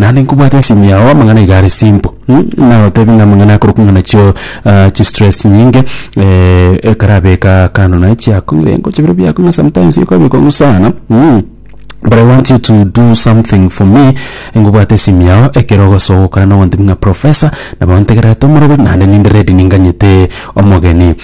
naende nkobwate esimu yao amang'ana iga are simple mh nagotebi ng'a amang'ana akorokwa ng'a nachio chistress nyinge ekarabeka kando naye chiakong'ire engocha bire biakong'a sometimes ekoba ekong'u sana mh but I want you to do something for me nkobwate esimu yao ekero ogosoa ogokora nagontebi ng'a professor nabo ntegerete omoroberi naende ninde ready ninganyete omogeni.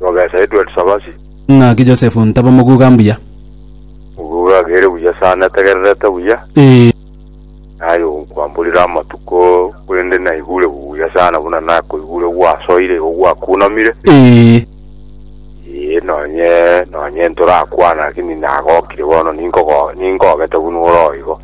Mogesa Edward Sabasi. Ng'aki Joseph ntaba moguga mbuya. Moguga agere buya sana ategererete buya. Ee. Naye nkwamborire amatuko korende naigure buya sana buna nakoigure gwasoire igo gwakunamire. Ee. Ee, nonye nonye ntorakwana lakini nagokire bono ninkogo ninkogete buna ore oigo.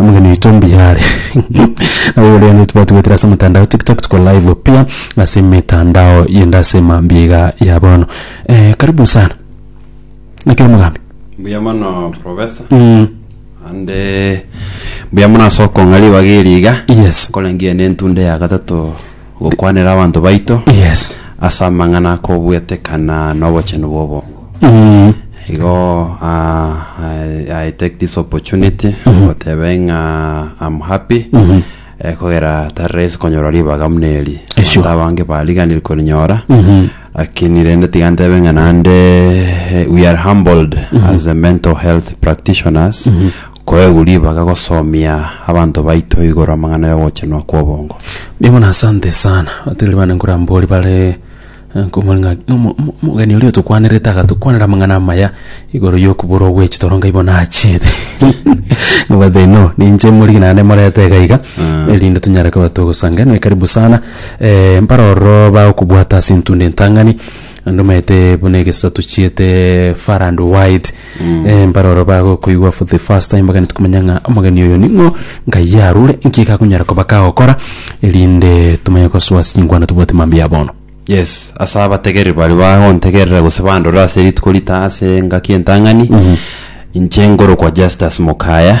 Omogeni oito mbuya are. Nabo boria onye twatugwetire ase omotandao tiktok tuko live pia ase emetandao yende ase mambia iga ya bono. Eh, karibu sana. Naki omogambi. Mbuya mono professor Mm. ande mbuya mono ase okong'a ribaga eri iga Yes. nkorangeria nentunde ya gatato gokwanera abanto baito Yes. ase amang'ana akobwetekana nobochenu bobo. Mm. Igo ah, I take this opportunity gotebe ng'a I'm happy Mhm. eh, kogera tari rahisi konyora ribaga buna eri. Esyo. Ata abange bariganire korinyora Mhm. lakini rende tiga ntebe ng'a nande eh, we are humbled as a mental health practitioners Koegwa ribaga gosomia abanto baito igoro amang'ana y'ogochenwa kw'obongo. Mbuya mono asante sana otebire bande nkorambori bare nkomori ng'a omo- omo- omogeni oria otokwanerete agatokwanera amang'ana amaya igoro y'okobura ogwechia toro nkai bono achiete nobwate no ninche omorigi naende moreta iga iga erinde tonyare koba togosanga inwe karibu sana mpare ororo bagokobwata ase intunda entang'ani naende omanyete buna egesato chiete far and wide. Eh, mbaroro bagokoigwa for the first time bagani tukumanya ng'a omogeni oyo ning'o ngai yarure nki gakonyara koba kagokora erinde tumanye gosoa singwana tobwate mambia ya bono yes ase abategeri bari bagontegerera gose bandore ase rituko rita ase engaki entang'ani inche ngorokwa justus mokaya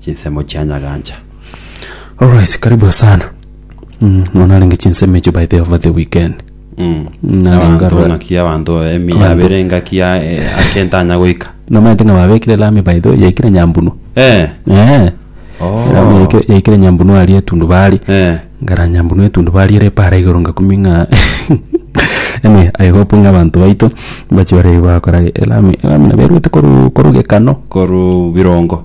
Chinsemo chia Nyagancha. Alright, karibu sana. Mm, no narenge chinsemo echo by the over the weekend. Mm. Na Abanto lingaro- bono ki abanto emi Abanto. abere engaki ya eh, akentanya goika. Nomaete ng'a babekire lami by the way, yaikire nyambunu. Eh. Eh. Oh. Lami yaikire- yaikire nyambunu aria etundubari. Eh. Ngara nyambunu etundubari ere para igoro ngakumi ng'a Anyway, I hope ng'a abanto baito mbachi bare bakora elami elami naberwete koru koru gekano. Koru birongo.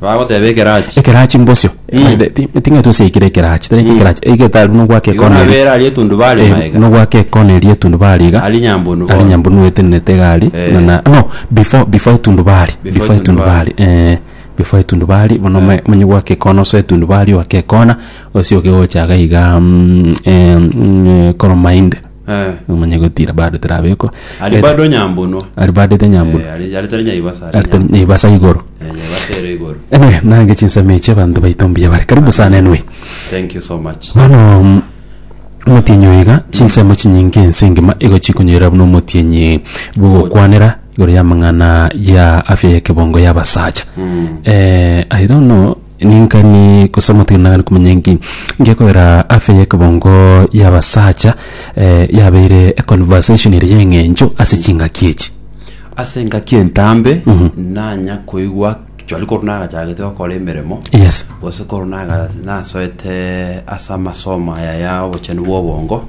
Bagoteba ekerachi. Ekerachi mbosio. Eh. Ti- ti- Ting'aitwe ase aikire ekerachi, tari aikire ekerachi, aikire tari buna ogwaka Igo ekona eri. nabere aria etundu bare Eh, maega. nogwaka ekona eria etundubari iga Ari nyambunu ari bono. nyambunu etenenete iga ari Eh. nana no before before etundubari Before before etundubari. etundubari eh before etundubari bono Eh. omae- omanye gwaka ekona ase etundubari ogake ekona osie oke gocha iga iga mm, eh, mm, eh, koromainde Eh, nomanye gotira bado terabekwa ari bado nyambunwa ari bado tenyambura Eh, ari ari tari nyaibasa ari ari nyambunwa. nyaibasa igoro Eh, nyaibasa ere igoro anyway nange chinsemo echi abanto baito mbuya bare karibu sana anyway thank you so much bono mm, omotienyi oyo iga chinsemo chinyinge ense engima igo chikonyoira buna omotienyi bogokwanera igoro y'amang'ana ya afya y'ekebongo y'abasacha Mm. eh, i don't know Ning'ani gose omotienenani komanya enki? Ngekogera afya y'ekebongo y'abasacha yabeire econversation eria y'eng'encho ase chingaki echi. Ase engaki entambe nanya koigwa chwari korwa nagachagete gokora emeremo Yes. gose korwa naga- nasoete ase amasomo aya ya obochenu bwa obongo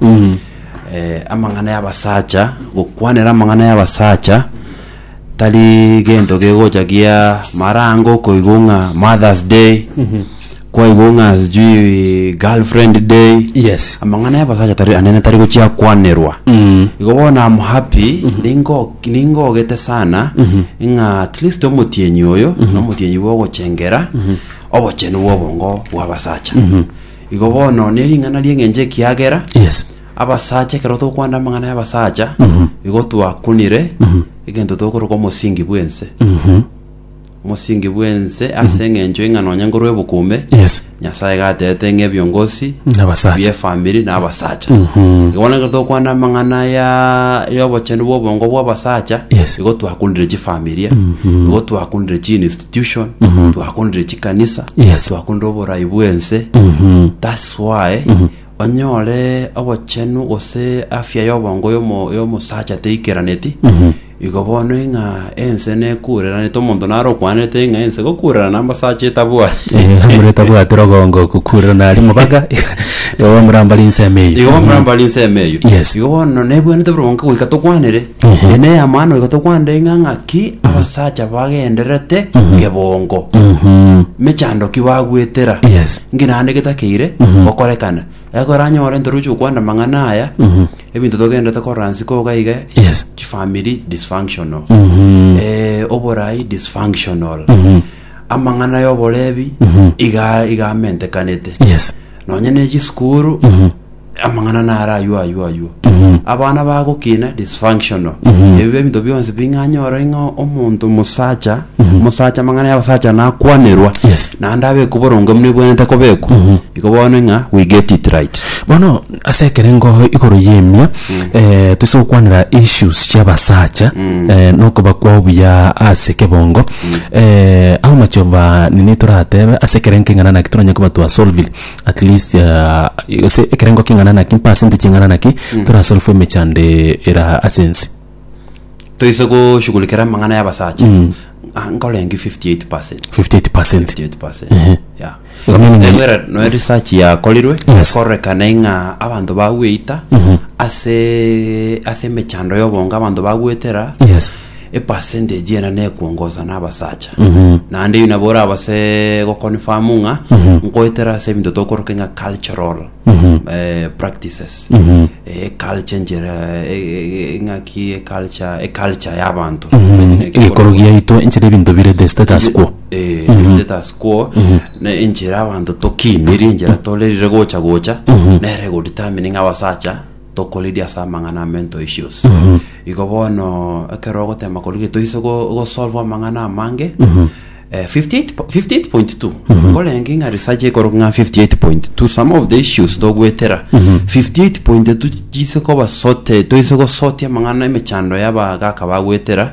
eh, amang'ana y'abasacha gokwanera amang'ana y'abasacha Tari gento gegocha gia marango okoigwa ng'a Mother's Day, kwaigwa ng'a sijui Girlfriend Day. Yes. Amang'ana y'abasacha tari anene tari gochia kwanerwa. Igo bono am happy, ningo ningogete sana ng'a at least omotienyi oyo na omotienyi bwa ogochengera obochenu bwa obongo bwa abasacha. Igo bono ne ring'ana ri'eng'encho ekiagera Yes. Abasacha, ekero tokwana amang'ana y'abasacha, igo twakunire egento tokoroka omosingi bw'ense. Omosingi bw'ense ase eng'encho ing'a nonye nkorwa ebukume, Yes. Nyasaye iga aterete ng'a ebiongosi Nabasacha. biefamiri na abasacha. Igo bono ekero tokwana amang'ana ya y'obochenu bw'obongo bw'abasacha, Yes. igo twakunire chifamilia, igo twakunire chiinstitution, twakunire chikanisa, Yes. twakunire oborai bw'ense. That's why onyore obochenu gose afya y'obongo y'omo- y'omosacha teikeraneti, igo bono ing'a ense nekureranete, omonto nare okwanete ing'a ense gokurerana amasacha etabwati. amureta bwatera ogongo kukurera nari mobaga igo bamurambari nseme Igo eyio bamurambari nsemo eyio. Yes. Igo bono nebwenerete buru bonka goika tokwanere Ehe. Ene yamano igo tokwande ng'a ng'aki abasacha bagenderete nkebongo Mhm. mechando ki bagwetera Yes. ngi naende getakeire gokorekana ekoranyore ntoruche okwanda amang'ana aya ebinto togenderete korora nsiko iga iga Yes. chifamiri dysfunctional Mhm. eh, oborai dysfunctional Mhm. amang'ana y'oborebi iga igamentekanete Yes. nonye ne chisukuru amang'ana naro aywo aywo aywo abana bagokina dysfunctional ebio ebinto bionsi bing'anya oro ing'a omonto omosacha omosacha amang'ana y'abasacha nakwanerwa Yes. naende abekwa oboronge buna ebwenerete kobekwa iko bono ing'a we get it right bono ase ekerengo igoro y'emia eh, toise gokwanera issues chi'abasacha eh, nokoba kwao buya ase kebongo eh, how much of a nini toratebe ase ekerengo keng'ana naki toranyare koba twasolvire at least ah, gose ekerengo king'ana naki mpasenti ching'ana naki torasolve emechande era ase ense toise goshugulikera amang'ana y'abasacha Ah, nkorengi 58 58 percent 58%. Ehe. Yeah. Igo meaning- Ase bwera noe research yakorirwe Yes. ekorekana ing'a abanto bagweita ase ase emechando y'obongo abanto bagwetera yes epercentage ena nekwongoza na abasacha naende eyi nabo orabase goconfirm ng'a nkoetera ase ebinto tokoroke ng'a cultural eh, practices Eh, culture enchera eh, eh, eh, ng'aki eculture eculture y'abantu egekoro giaito enchera ebinto bire the status quo Eh, status quo na enchera abanto tokiinirie enchera torerire gocha gocha nere egodetermine ng'a abasacha Tokoriri ase amang'ana ame ntoisie ose. Igo bono ekero ogotema korwa gete toise go- gosolve amang'ana amange eh, 58 po- 58.2 nkorenge ng'a research ekorwa ng'a 58.2 some of the issues togwetera 58.2 chise koba sorted toise gosotia amang'ana emechando y'abagaka bagwetera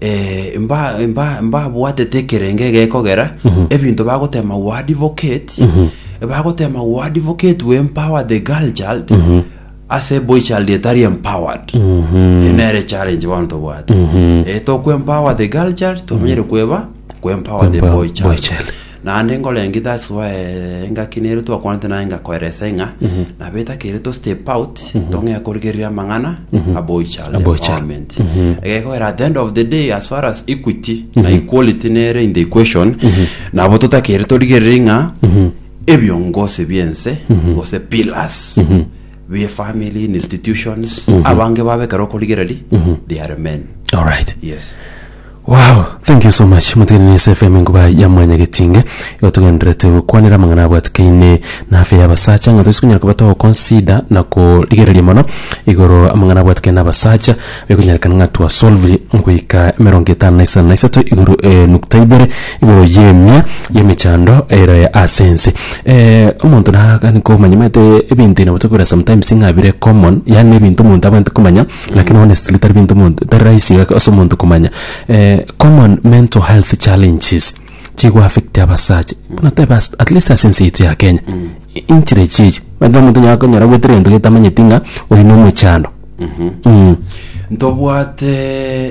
eh, mba- mba- mbabwatete ekerenge gekogera ebinto bagotema we advocate bagotema we advocate we empower the girl child ase boy child etari empowered Eye nere challenge bono tobwate Eh, tokwe empower the girl child tomanyire kweba kwe empower the boy child Naende nkorengi that's why engaki nere twakwanete naye ngakoerese ng'a nabo etakere to step out tong'ee korigereria amang'ana aboichara Aboichara. empowerment egekogera at the end of the day as far as equity na equality nere in the equation nabo totakere torigererie ng'a ebiongozi bi'ense gose pillars bie family in institutions abange babe ekero okorigereria they are men alright yes Waoo, thank you so much motigani na Ase FM enkuba ya mwanyagetinge, igo togendererete gokwanera amang'ana abwatikaine na afya ya abasacha, ng'a toise konyara koba togoconsider na korigereria mono igoro amang'ana abwatikaine na abasacha, bikonyerekana ng'a twasolviri goika emerongo etano na isano na isato igoro nukta ibere igoro y'emia y'emechando ere ase ense. omonto naaga nikomanya omanyete ebinto nabo tokobera sometimes ng'a bire common, yaani na ebinto omonto abwate komanya. Lakini honestly tari binto omonto tari rahisi iga ase omonto komanya common mental health challenges chigo affect abasacha buna tobe ase at least ase ense yaito ya Kenya inchire echi echi omanyete omonto onye akonyora agoetera egento gete tamanyeti ng'a oyu nomochando Ntobwate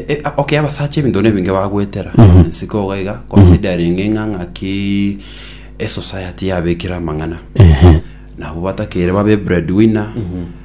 e- a- okay abasacha ebinto nebinge bagoetera ense ko iga iga considering ng'a ng'aki esociety yabekire amang'ana nabo batakeire babe breadwinner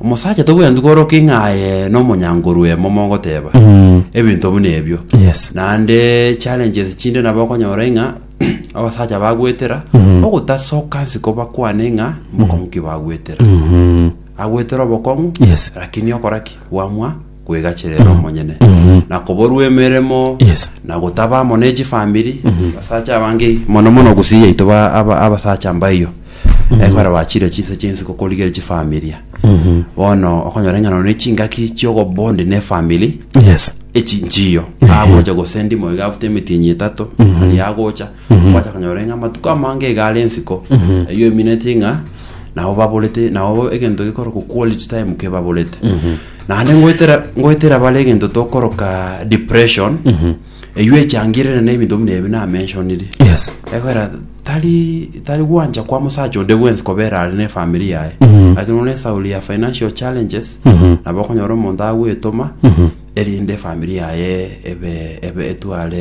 Omosacha tobwenereti kworoka ing'a aye nomonyankorwe momo ogoteba ebinto buna ebio. Yes. Naende challenges chinde nabo okonyora ing'a abasacha bagwetera ogotasoka nsi kobakwane ing'a mbokong'u ki bagwetera. Agwetera obokong'u Yes. lakini okora ki? Bwamwa kwegacherera omonyene na koborwa emeremo Yes. na gotaba amo ne chifamiri abasacha abange mono mono gusii yaito ba- aba- abasacha mbaiyo ekore bachire chinse chinsi gokorigere chifamilia bono okonyora eng'ano ne chingaki chiogobonde ne family Yes. echi nchiyo agocha gose ndimo iga after emetienyi etato ari agocha gwacha konyora ng'a amatuko amange iga are ensiko eyio emineti ng'a nabo baborete nabo egento gikorokwa quality time kebaborete naende ngoetera ngoetera bare egento tokoroka depression eywo echangirire na ebinto buna ebi namentionire yes ekwera tari tari gwancha kwa musacha onde bwensi kobera are ne family yaye lakini one esauri ya financial challenges nabo okonyora omonto agwetoma erinde family yaye ebe ebe etware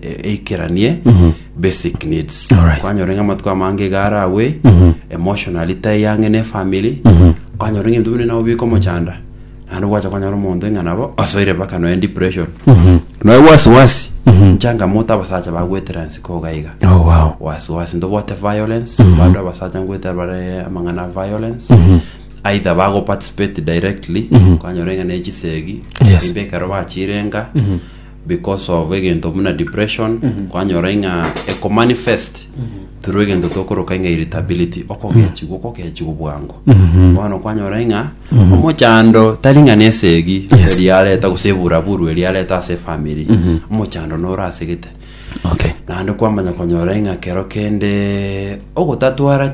e- eikeranie basic needs Alright. kwanyora ng'a amatuko amange iga aragwe emotionally taiyange ne family kwanyora ng'a ebinto bine nabo bika omochanda naende gwacha kwanyora omonto ng'a nabo asoire mpaka nonya depression noe wasiwasi nchangamoto abasacha bagwetera nsiko iga iga Oh, wow. wasiwasi ntobote violence bado abasacha ngwetera bare amang'ana a violence either bago participate directly kwanyora ng'a nechisegi Yes. imbe ekero bachirenga because of egento buna depression kwanyora ng'a ekomanifest through egento tokoroka ng'a irritability okogechigwa okogechigwa bwango bono kwanyora ng'a omochando tari ng'a nesegi Yes. eri yareta gose eburaburu eri yareta ase efamiri omochando noro ase gete okay naende kwamanya konyora ng'a kero kende ogotatwara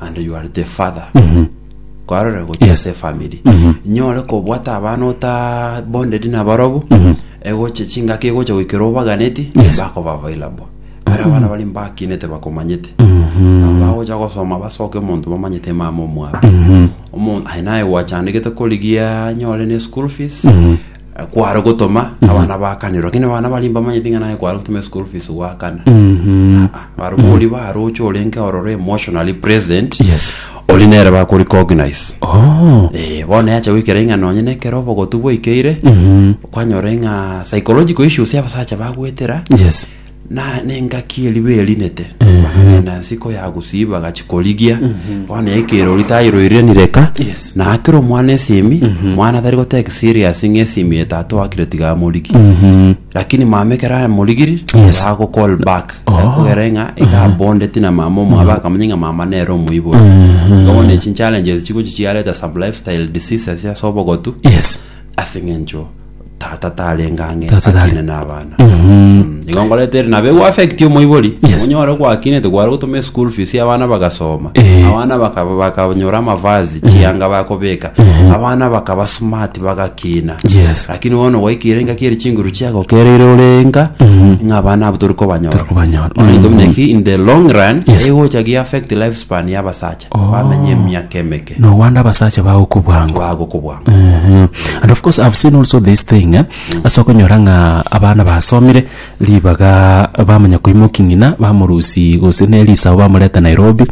and you are the father kwarore gochia Yes. ase family nyore kobwata abana ota bonded nabarobu egoche chingaki egocha goikera obaganeti Yes. bakoba available bare abana bari mbakinete bakomanyete bagocha gosoma basoke omonto bamanyete mama omwabo omonto aye naye gwachandegete korigia nyore ne school fees kware gotoma abana bakanirwa lakini abana bari mbamanyete ng'a naye kware gotoma school fees gwakana Mhm. barugori baroche orenge ororo emotionally present Yes. ori nere bakorecognize Oh. Eh, bono yacha goikera ing'a nonye na ekero obogotu bwaikeire Mhm. kwanyora ing'a psychological issues y'abasacha bagwetera Yes. Na nengaki eriba erinete, bakagenda nsiko ya gusii bagachia korigia, bono ekerori tairoirenire ka, Yes. na akire omwana esimi, mwana tari gotake serious ng'a esimi ye tata oakire tiga amorigi. Lakini mama ekero amorigiri, Yes. yago call back. Akogera ng'a iga abondeti na mama omwabo akamanya ng'a mama nere omoibori. Igo bono echi challenges chigochia chiareta some lifestyle diseases ase obogotu, Yes. ase eng'encho tata tarenge ang'e Tata tare- akine na abana Mm, igo ngoretere nabo egoafekti omoibori Yes. onyore gwakinete gware gotoma eschool fees abana bagasoma Eh. abana bakaba bakanyora amavazi chianga bakobeka abana bakaba smart bagakina Yes. lakini bono gwaikire engaki eri chinguru chiagokereire ore enka ng'a abana abo tori kobanyora Tori kobanyora. Onye Mm. tomineki in the long run Yes. egocha gi affect life span ya abasacha Oh. bamenye emiaka emeke No wonder abasacha bagokwa bwango. bagokwa bwango Mhm. And of course, I've seen also this thing, eh? ase okonyora ng'a abana basomire ribaga bamanya koimoki ng'ina bamorusi gose ne risao bamoreta Nairobi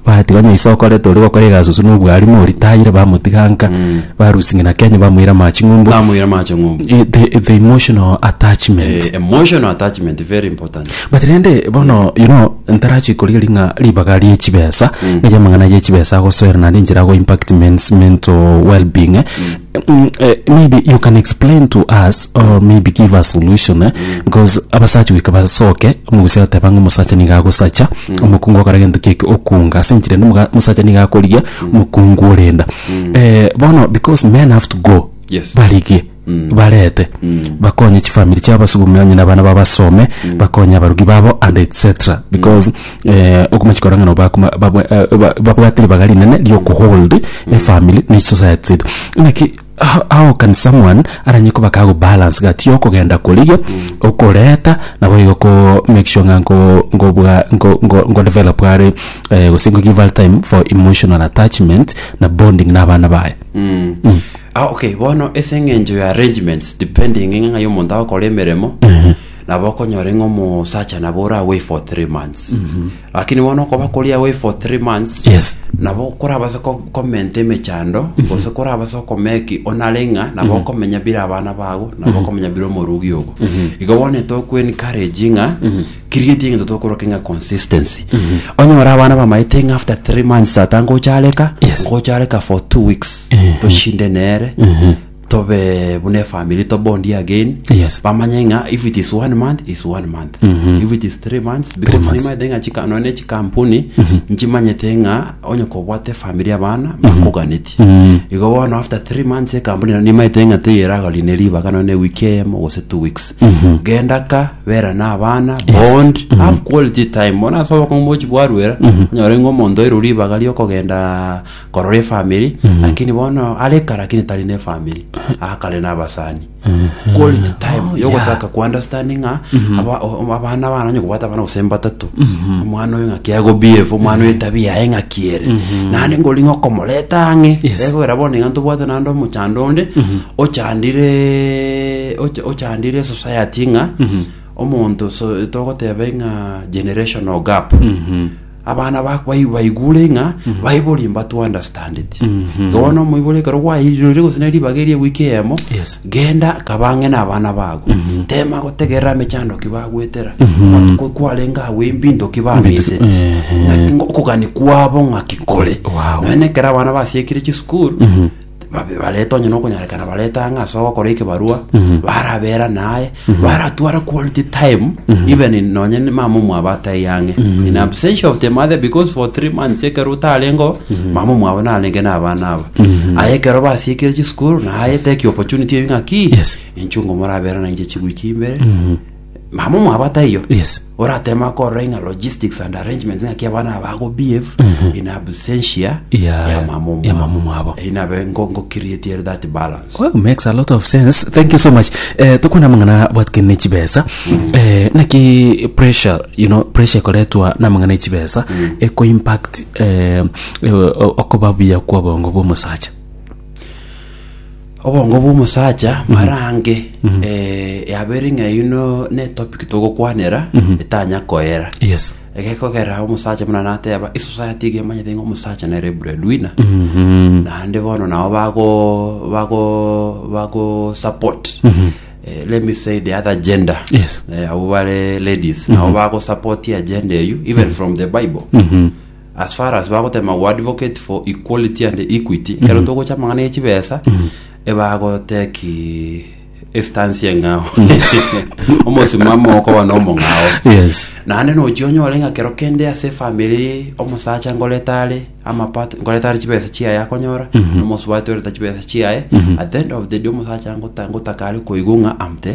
batiga onye isoko rete ori gokora egasusu na obwarimu oritayire bamotiga nka barusi ng'ina Kenya bamoira amachi ng'umbu bamoira amache ng'umbu Eh, the, the emotional attachment Eh, emotional attachment very important But rende bono you know ntarachi korigeria ng'a ribaga rie chibesa eria amang'ana ye chibesa agosoera naende enchera ago impact men's mental well being eh, mm, eh, maybe you can explain to us or maybe give us solution eh, because abasacha goika basoke omogusia agoteba ng'a omosacha niga agosacha omokungu ogokora gento kieke okunga ase enchera ende omoga- omosacha niga akorigia omokungu orenda Eh, bono because men have to go Yes. barigie barete bakonye chifamiri chiabo basugumia onye na abana babo basome bakonye abarugi babo and etc because eh, okomanya korwa ng'a nabo bakoma- babwa- eh, ba- babwate ribaga rinene riokohold efamiri na chisociety chiaito ng'aki how- how can someone aranye koba kagobalance gati yokogenda korigia okoreta nabo igo ko make sure ng'a nko- nkobwa nko- nko- nkodevelop are eh, gose nko give her time for emotional attachment na bonding na abana baye Ah okay, bono ase eng'encho ya arrangements depending ng'a ng'ai omonto agokora emeremo nabo okonyora ng'a omosacha nabo ore away for three months lakini bono okoba kori away for three months Yes. nabo korabase ko- komenta emechando gose korabase okomeki onare ng'a nabo okomenya bire abana bago nabo okomenya bire omorugi ogo igo bono etogokwencourage ng'a Keria gento egento tokoroke ng'a consistency. Onye ore abana bamaete ng'a after three months tata ngochareka, Yes. ngochareka for two weeks. Toshinde nere, tobe buna efamily tobondi again. Yes. Bamanye ng'a if it is one month, is one month. If it is three months, because months. nimaete ng'a chika- nonye chikampuni nchimanyete ng'a onye kobwate family abana bakoganeti igo bono after three months ekampuni nimaete ng'a teyeragori ne ribaga nonye ewiki eyemo gose two weeks genda ka bera na abana bond have quality time bono ase obokongo bochi bwarwera onyore ng'a omonto oire ribaga riokogenda korora efamiri lakini bono are eka lakini tari na efamiri akare na abasani quality time yogotaka kuunderstand ng'a aba- o- abana bana onye kobwata abana gose mbatato omwana oyo ng'aki agobehave omwana oyo etabia yaye ng'aki ere naende ngori ng'a okomoreta ang'e Yes. egwera bono iga ntobwate naende omochando onde ochandire ocha- ochandire society ng'a omonto so- togoteba ng'a generational gap abana ba- bai- baigure ng'a baibori mbatu understand it bono omoibori ekero gwairire gose ne ribaga eria ewiki eyemo Yes. genda kabange na abana bago tema gotegerera mechando ki bagwetera amatuko kwarenge agwo embinto ki bamisete Ehe. Naki ngo- okogani kwabo ng'aki kore Wow. nonya nekero abana basiekire chisukuru babe bareta onye nokonyarekana bareta ang'e ase ogokora ekebarua barabera naye baratwara quality time even in- nonye ni mama omwabo atai ang'e in absentia of the mother because for three months ekero otarengo mama omwabo narenge na abana aba aye ekero basiekire chisukuru naye take opportunity ebi ng'aki Yes. inchungo morabera nainche chiwiki imbere mama omwaba taiyo Yes. oratema korora ing'a logistics and arrangements ng'aki abana aba ago behave in absentia Yeah, ya mama omwabo. ya mama omwabo. Eh, inabe ngo ngo create that balance Well, makes a lot of sense thank you so much eh, tokwana amang'ana bwatikani ne chibesa eh, naki pressure you know pressure ekoretwa na amang'ana ya chibesa eko impact eh, eh, okoba buya kwa obongo bwa omosacha Obongo bw'omosacha marange yabeire ng'a eyio no n'etopic togokwanera etanya koera Yes. egekogera omosacha buna nateba esociety iga emanyete ng'a omosacha nere breadwinner naende bono nabo bago bago bago support eh, let me say the other gender Yes. eh, abo bare ladies nabo bago support agenda eyio even from the bible as far as bagotema go advocate for equality and equity ekero togocha amang'ana ya chibesa ebagoteki estansi eng'ao omosimamo okoba na omong'ao yes naende nochia onyore ng'a kero kende ase efamiri omosacha ngorete are amapato ngorete are chibesa chiaye akonyora na omosubati orete chibesa chiaye at the end of the day omosacha ngota- ngotaka are koigwa ng'a am the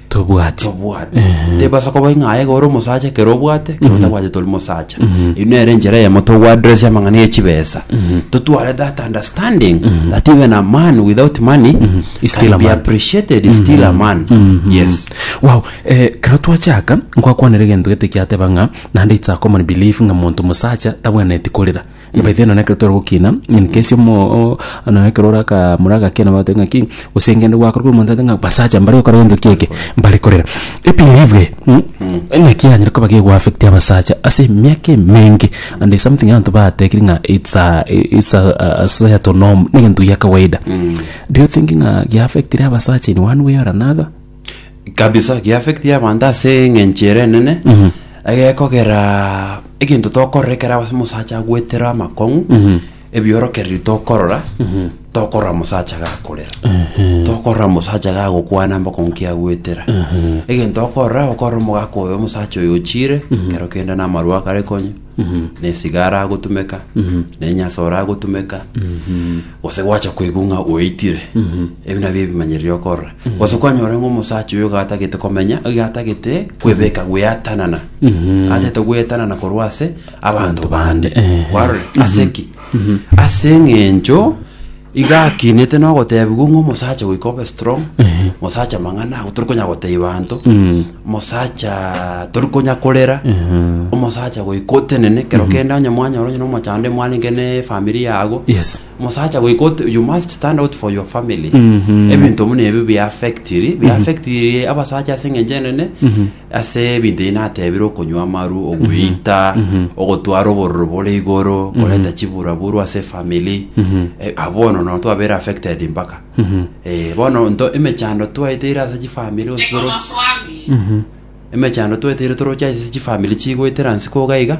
tobwati tobwati Ehe. tebasa koba ng'a aye gore omosacha ekero obwate ekero otabwate tori mosacha eyi nere enchera eyemo togoaddress amang'ana ya chibesa totware that understanding that even a man without money Is still can a be man. appreciated is still a man yes wow eh, kero twachaka nkwakwanera egento gete kiateba ng'a naende it's a common belief ng'a monto mosacha tabwenereti korera Nabaite nonya nekero tore gokina, nkesi omoo nonya ekero ore akamura agakena bagotebi ng'aki gose ngende gwakorokire omonto agotebi ng'a basacha mbare gokora gento ki eke, mbare korera. Ebelieve eye naki yanyare koba gegoaffecti abasacha ase emiaka emenge and there's something abanto batekiri ng'a it's a it's a a societal norm, negento gia kawaida. Do you think ng'a giaffectire abasacha in one way or another? kabisa giaffecti abanto ase eng'encho ere enene egekogera egento tokorora ekero ase omosacha agwetera amakong'u ebiorokererio tokorora tokorora mosacha gakorera tokorora mosacha gagokwana amakong'u ki agwetera egento okorora okorora omogaka oyo omosacha oyo ochire ekero kende namarwa akare konywa na esiga aragotumeka na enyasa oragotumeka gose gwacha koigwa ng'a oitire ebi nabio ebimanyererio okorora gose kwanyora ng'a omosacha oyo iga atagete komenya iga atagete kwebeka gweatanana atagete gwetanana korwa ase abanto bande Eh. kwarora ase ki ase eng'encho Iga akinete nogotebigwa ng'a omosacha goika obe strong mosacha mang'ana ago tori konya gotebia banto mosacha tori konya korera omosacha goika otenene kero kende onye mwanyora onye nomochando mwanenge ne efamiri yago Yes. mosacha goika ote you must stand out for your family ebinto buna ebi biaffectiri biaffectiri abasacha ase eng'encho enene Ase ebinto ebi natebire okonywa amaru, ogweita, ogotwara obororo bore igoro, koreta chiburaburu ase efamili. Eh, ah, bono no twabeire affected mpaka. Eh, bono nto emechando twaeteire ase chifamili gose toro emechando twaeteire toroche ase chifamili chigoetera nse koga iga.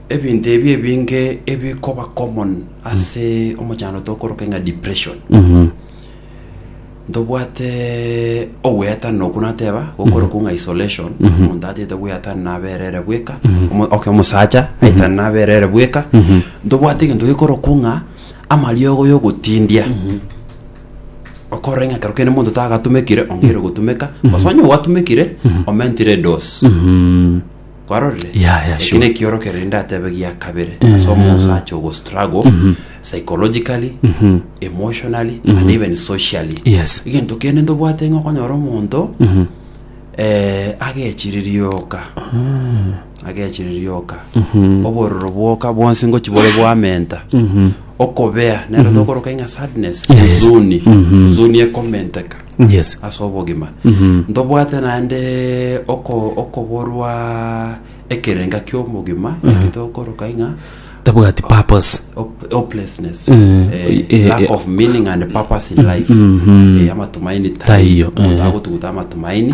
Ebinto ebi ebinge ebikoba common ase omochandroto okoroka ng'a depression ntobwate ogweatana okwo nateba gokoroka ng'a isolation omonto atete gweatana naberere bweka omo- oke omosacha aitana naberere bweka ntobwate egento gekorokwa ng'a amariogo yogotindia okorora ng'a ekero kende monto tagatumekire ongeire gotumeka gose onye gwatumekire omentire edosi kwarorire Yeah, yeah, Eki sure. nekiorokero rende atebe gia kabere ase omonso ache ogo struggle psychologically emotionally and even socially Yes. egento kende ntobwate ng'a okonyora omonto eh, agechirerioka agechirerioka obororo bwoka bwonsi ngochi bore bwamenta okobea nero tokoroka ing'a sadness Yeah, yes. huzuni huzuni ekomenteka Yes. ase obogima ntobwate naende oko- okoborwa ekerenga ki'omogima eki tokoroka ing'a Tabwati purpose. hop- hopelessness Mm. Eh, Eh, lack eh. of meaning and purpose in life Eh, amatumaini Taiyo, taiyo eh. agotuguta amatumaini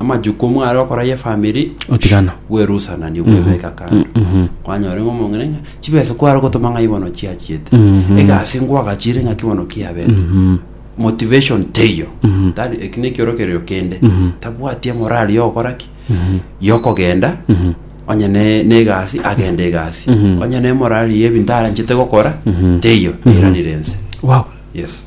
amajukumu are okoraya efamiri Otigana. bwerusanani bwebeka kando mhm. kwanyora ng'a omong'ina ng'a chibesa kware gotoma ng'a ibono chiachiete Mhm. egasi ngwagachire ng'a kibono kiabete Mhm. motivation teiyo Mhm. tari eki nekiorokererio kende Mhm. tabwati emorari yogokora ki Mhm. yokogenda Mhm. onye ne- negasi agende egasi Mhm. onye nemorari yebinto aranchete gokora Mhm. teiyo Mhm. eiranire ense wow yes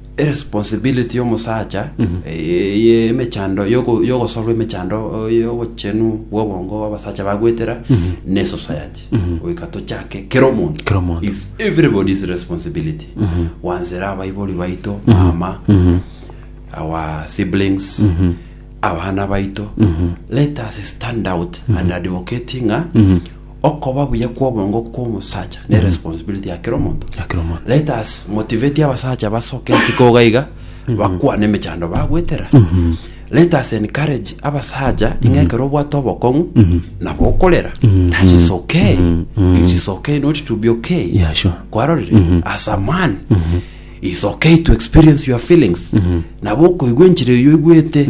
Eresponsibility y'omosacha eh, ye emechando yogo- yogosolwa emechando oh, y'obochenu bw'obongo abasacha bagwetera ne society goika tochake kera omonto Kera omonto. is everybody's responsibility gwansera abaibori baito mama our siblings abana baito let us stand out and advocating a Okoba buya kw'obongo kw'omosacha ne responsibility ya kera omonto. Ya kera omonto. Let us motivate abasacha basoke ase koga iga bakwane emechando bagwetera. Let us encourage abasacha ing'a ekero obwate obokong'u nabo okorera. That is okay. It is okay not to be okay. Yeah, sure. Kwarorire as a man it's okay to experience your feelings nabo okoigwa enchera eyo oigwete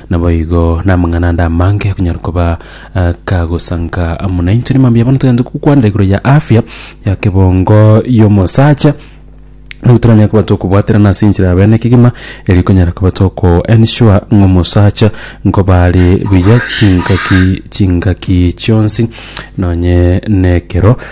Naboigo namang'ana ande amange akonyara koba akagosanka amo nainche. Ni mambia bono togende gokwanera igoro ya afya ya kebongo y'omosacha nigo toranyare koba tokobwaterana ase enchera ya bene kegima eri ekonyara koba toko ensure ng'a omosacha nkoba are buya chingaki chingaki chionsi nonye na ekero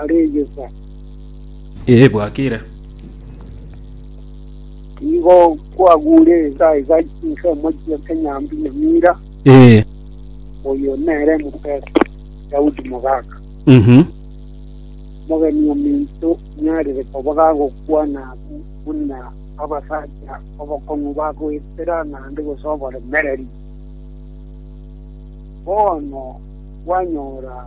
areyesa. Ee, bwakire. Nigo kwagure ensa iga inse omochie Kenyambi Nyamira, Ee. oyo nere Moses Daudi Mogaka. Mhm. Omogeni ominto nyarire koba gagokwana abwo buna abasacha abakong'u bagoetera naende gose oboremereri. Bono kwanyora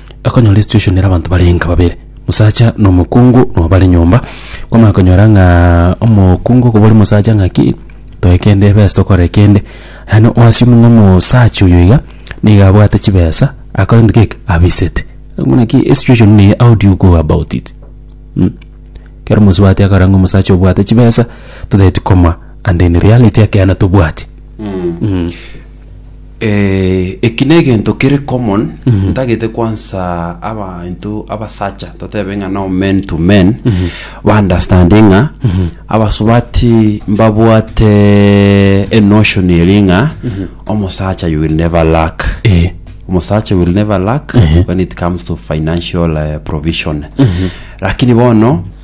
Akonyora esitueshoni ere abanto bare enka babere, mosacha na omokungu nabo bare nyomba. Kwamanya konyora ng'a omokungu okobori mosacha ng'aki toe kende ebesa tokore kende, yaani o assume ng'a omosacha oyo iga niga abwate chibesa akore gento keke abisete. Buna ki esitueshoni neye how do you go about it mh. Ekero mosubati akora ng'a omosacha obwate chibesa totagete koma and in reality ekeene tobwati mh. Eh, eki negento kere common ntagete kwansa abainto abasacha totebe ng'a no men to men baunderstande ng'a abasubati mbabwate enotion eri ng'a omosacha you will never lack Eh. omosacha will never lack when it comes to financial eh, provision lakini bono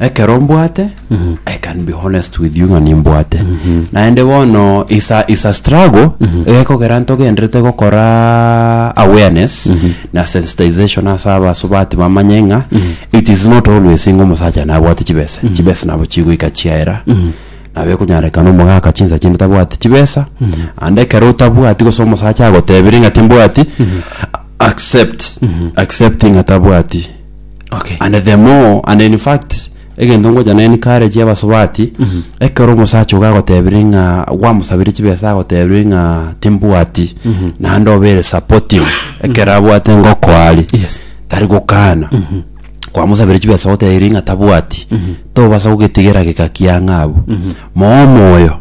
ekero mbwate i can be honest with you ng'a nimbwate naende bono is a, is a struggle egekogera ntogenderete gokora awareness na sensitization ase abasubati bamanye ng'a it is not always ng'a omosacha nabwate chibesa chibesa nabo chigoika chiaera nabo ekonyarekana omogaka chinsa chinde tabwati chibesa and ekero otabwati gose omosacha agotebire ng'a timbwati accept accept ng'a tabwati Okay. and the more and in fact egento ngocha naye encourage abasubati ekero omosacha oga agotebire ng'a gwamosabire chibesa agotebire ng'a timbwati naende obere supportive ekero abwate ngoko aria Yes. tari gokana kwamosabire chibesa ogotebiri ng'a tabwati tobasa gogetigera geka kiang'a abwo moo omoyo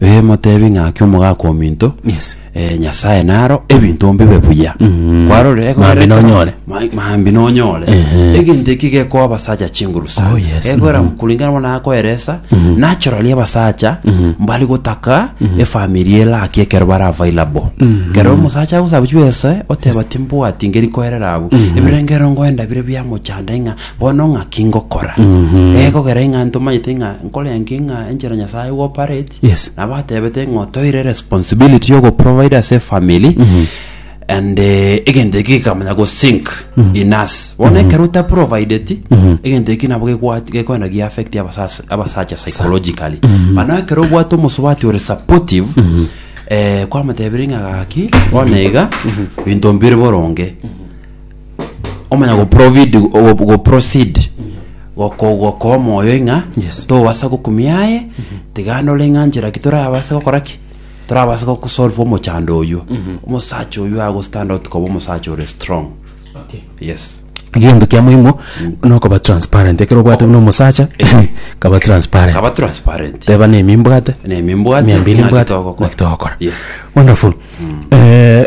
ee motebi ng'a ake omogaka ominto Yes. eh, nyasaye naro ebinto mbibe buya Mm. kwarorire Maambia nonyore. Ma- maambi nonyore Ehe. egento eki gekoa abasacha chinguru sana Oh, yes. Gekoera Mhm. kulingana bona akoeresa naturally abasacha mbari gotaka efamili elaki ekero bara available kero omusacha agusaba chibese oteba timbwati ngeri koerera abu ebirengero ngoenda bire biamochanda ing'a bono ng'aki ngokora egokera ing'a ntomanyete ing'a nkore enki ing'a enchera nyasaye operate Yes. nabo atebete ng'o toire responsibility yo goprovide ase efamily and eh, egento eki gikamanya gosink in us bono ekero otaprovideti egento eki nabo gekwa- gekoenda giaffect abasas- abasacha psychologically mano ekero obwate omosubati ore supportive eh, kwamotebire ng'a gaki bono iga binto mbire boronge omanya go provid go, go proceed goko goko moyo ing'a Yes. tobasa gokumia aye tigana ore ng'a njera ki torabase gokora ki torabase gokusolve omochando oywo omosacha oywo ago stand out koba omosacha ore strong yes Egento kia moimo nokoba transparent ekero obwate buna omosacha kaba transparent kaba transparent teba nemi mbwate nemi mbwate mia mbili ng'a mbwate gitogokora. naki togokora Yes. wonderful eh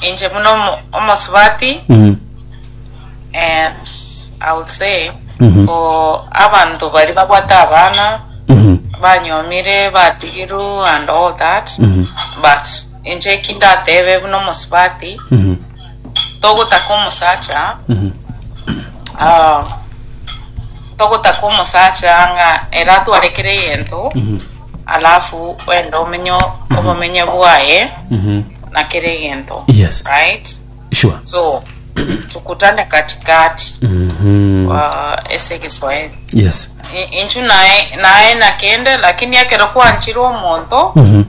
Inche buna omo- omosubati Mhm. eh, I would say Mhm. for abantu bari babwate abana Mhm. banyomire batigiru and all that Mhm. but inche kindatebe buna omosubati Mhm. togotaka omosacha Mhm. ah, togotaka omosacha ng'a era atwarekere egento Mhm. alafu wende omenye obomenye bwaye na kera egento Yes. right sure so tukutane katikati Mhm. uh, ese kiswahili yes I- inchu naye naye nakende lakini ekero kwanchire omonto Mhm.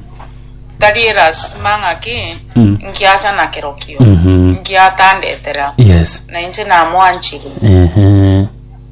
tari erasima ng'aki Mm. nkiacha nakerokio Mhm. nkiatandetera yes na inche namwanchire Ehe.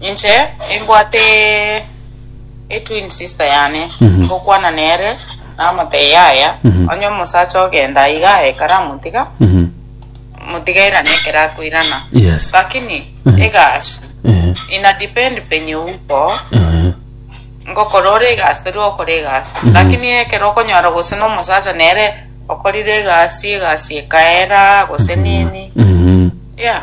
Inche nimbwate etwin sister yane ngokwana nere namotebia yaya onye omosacha ogenda iga aye karamotiga motigaira nekero akoirana Yes. lakini egasi Ehe. ina depend penye uko Ehe. ngokora ore egasi tari okora egasi lakini ekero okonyora gose nomosacha nere okorire egasi egasi ekaera gose nini Mhm. yeah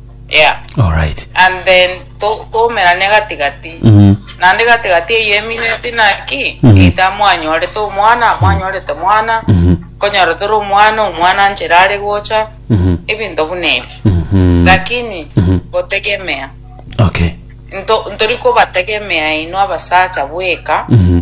Yeah. Alright. And then to- toumerane gati gati. Mhm. Naende gati gati eyio emineti naki, Mhm. eita mwanyorete omwana, mwanyorete mwana, Mhm. konyora tore omwana, omwana nchere are gocha, Mhm. ebinto buna ebi. Mhm. Lakini, Mhm. gotegemea. Okay. Nto- ntori kobategemea inwe abasacha bweka, Mhm.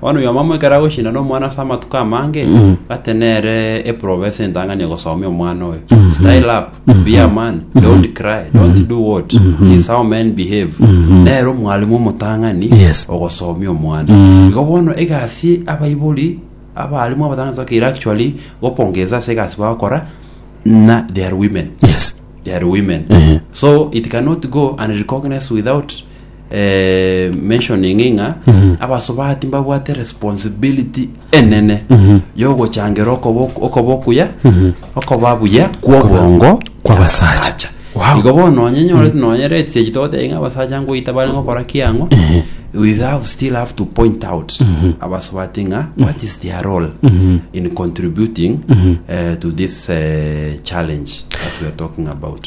Bono oyomamo ekero agochindana omwana ase amatuko amange, bate nere eprobe ase entang'ani ogosomia omwana oyo. Style up, be a man, don't cry, don't do what, this how men behave. Nere omwalimu omotang'ani Yes. ogosomia omwana. Igo bono egasi abaibori abalimu abatang'ani tokeire actually gopongeza ase egasi bagokora na they are women. Yes. They are women. So it cannot go and recognize without eh, mentioning ng'a abasubati mbabwate responsibility enene yogochangera okoba okoba okuya okoba buya kw'obongo Kw'abasacha. abasacha. Wow. igo bono onye nyore nonye red stage togoteba ng'a abasacha ngoita bare ngokora kiang'o we have still have to point out abasubati ng'a what is their role in contributing eh, to this eh, challenge that we are talking about